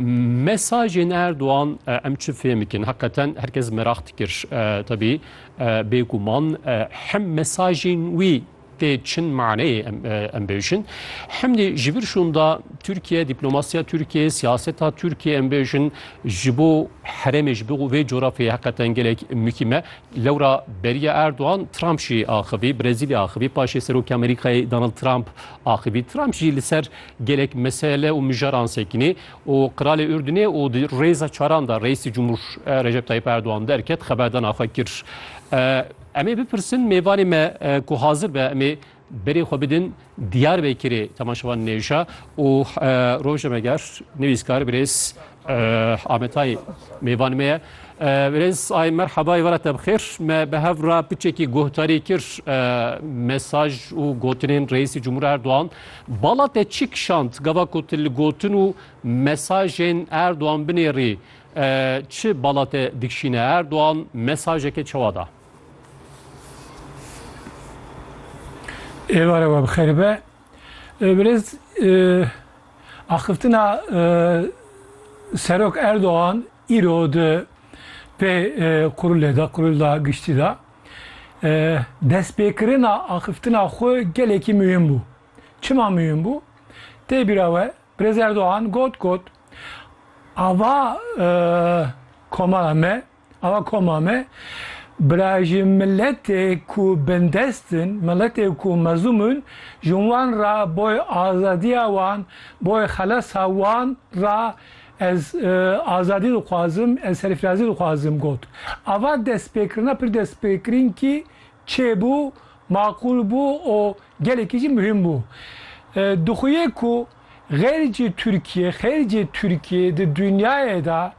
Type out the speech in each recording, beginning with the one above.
Mesajên Erdogan em çi fêm dikin? Heqeten her kes meraq dikir tebî bêguman hem mesajên wî tê çin maneyê em bêjin. Hem dê ji vir şûnda Tirkiye, dîplomasiya Tirkiye, siyaseta Tirkiye em bêjin ji bo herêmê ji bo vê coğrafyayê heqeten gelek mukîme. Lewra beriya Erdogan Trump jî axivî, Brezîlya axivî, paşê Serokê Amerîkayê Donald Trump axivî. Trump jî li ser Gelek mesele û mijaran sekinî û Qiralê Urdunê û di rêza çaran de Reîsê Cumhur Recep Tayyip Erdogan derket xeberdana xwe kir. Em ê bipirsin mêvanê me ku hazir be em ê berê xwe bidin Diyarbekirê temaşevan nêja û rojnameger nivîskar birêz Ametayê mêvanê me ye. Birêz ay merhebay vera te bixêr. Me bi hev re piçekî guhdarî kir mesaj û gotinên Reîsî Cumhur Erdoğan. Bala te çi kişand gava ku tu li gotin û mesajên Erdoğan binêrî çi bala te dikişîne? Erdoğan mesajeke çawa da? Êvare we bixêr be. Birêz axiftina Serok Erdogan îro di pê qurulê de, qurulda giştî de destpêkirina axiftina xwe gelekî muhîm bû. Çima muhîm bû? Tê bîra we Birêz Erdogan got got ava komara me, Ava koma me, bira ji miletê ku bindest in, miletê ku mezûm in, ji wan ra boy azadiya wan, boy xelasa wan ra ez azadî dixwazim, ez serfirazî dixwazim got. Ava destpêkirina pir destpêkirînkî çêbû, maqûl bû û gelekî jî muhîm bû. Dixuyê ku xêrcî Tirkiye, xêrcî Tirkiye di dinyayê de,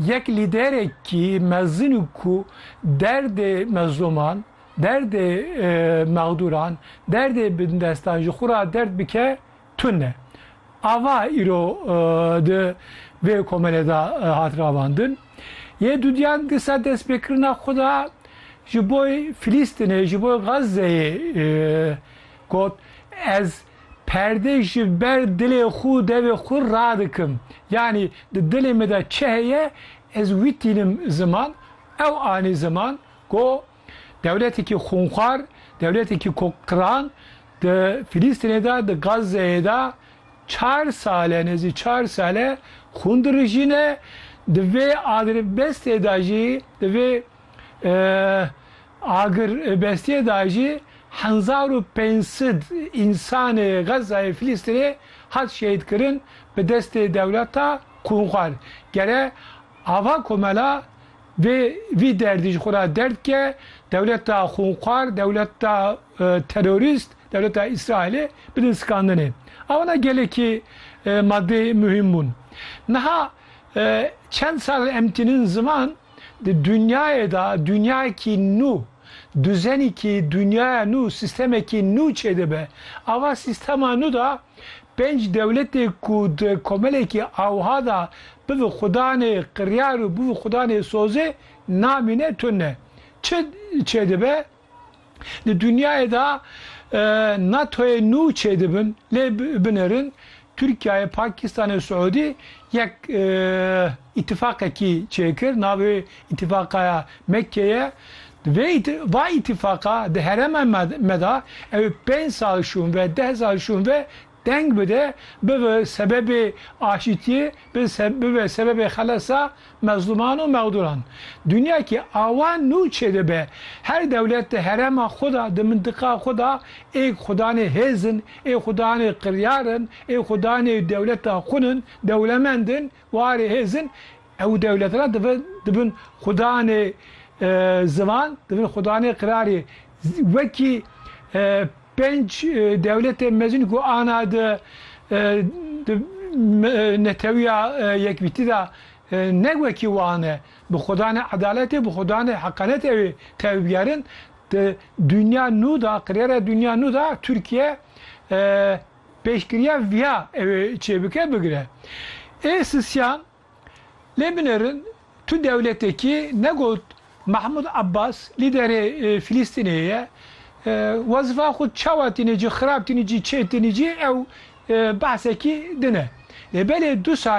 Yek lîderekî mezin û ku derdê mezluman, derdê mexdûran, derdê bindestan ji xwe re derd bike tune. Ava îro di vê komelê de hat ravandin. Yê Dudyan di ser destpêkirina xwe de ji bo Filîstînê, ji bo Xazzeyê got, Ez perdê ji ber dilê xwe û devê xwe radikim, yanî di dilê min de çi heye ez wî tînim ziman, ew anî ziman ku dewletekî xûnxwar, dewletekî ku qiran di Filîstînê de, di Gazeyê de çar sal e, nêzî çar sal e xûn dirijîne, di vê adribestê de jî, di vê Agir bestiye dayê jî hezar û pênc sed însanê Xezzayê Filîstînê hat şehîdkirin bi destê dewleta Konxar. Gere ava komela vê vî derdî ji xwe re derd ke dewleta Konxar, dewleta terorîst, dewleta Îsraîlê bidin sikandinê. Ava na gelekî madeyê muhîm bûn. Niha çend sal em tînin ziman Di dunyayê de dunyayekî nû, duzenîkî dunyaya nû, sîstemekî nû çêdibe. Ava sîstema nû de pênc dewletê ku di komelekî awha de bivî xudanê qiryar û bivî xudanê sozê namîne tune. Çi çêdibe? Di dinyayê de NATOyê nû çêdibin lê binerin Tirkiyeyê, Pakistanê, Siûdî yek îtîfaqekî çêkir navê wê îtîfaqaya Mekke ye. Vê va îtîfaqa di herema me de ew ê pênc sal şûn ve deh sal şûn ve Deng bide, bibe sebebê aşîtiyê, bibe sebebê xelesa mezlûman û mexdûran. Dinyayekî awa nû çêdibe, her dewlet di herêma xwe de, di mintiqa xwe de ê xwedanê hêz in, ê xwedanê qiryar in, ê xwedanê dewleta xwin in, dewlemend in, warê hêz in, Ew dewlet re divin dibin xudanê zivan, dibin xudanê qirarê. Wekî penc dewletê mezin ku ana di netewiya yekbîtî de ne wekî wan e. Bi xudanê edaletê, bi xudanê heqanetê ew ê tevbigerin. Di dinya nû de, qirêrê dinya nû de Tirkiye pêşkiriya viya ew ê çêbike bigire. Ê sisyan Lê binêrin tu dewletê kî negot Mahmud Abbas lîderê Filistînê ye wezifa xwe çawa tînî cî xirab tînî cî çê tînî cî ew behsekî din e. Lê belê du sal e.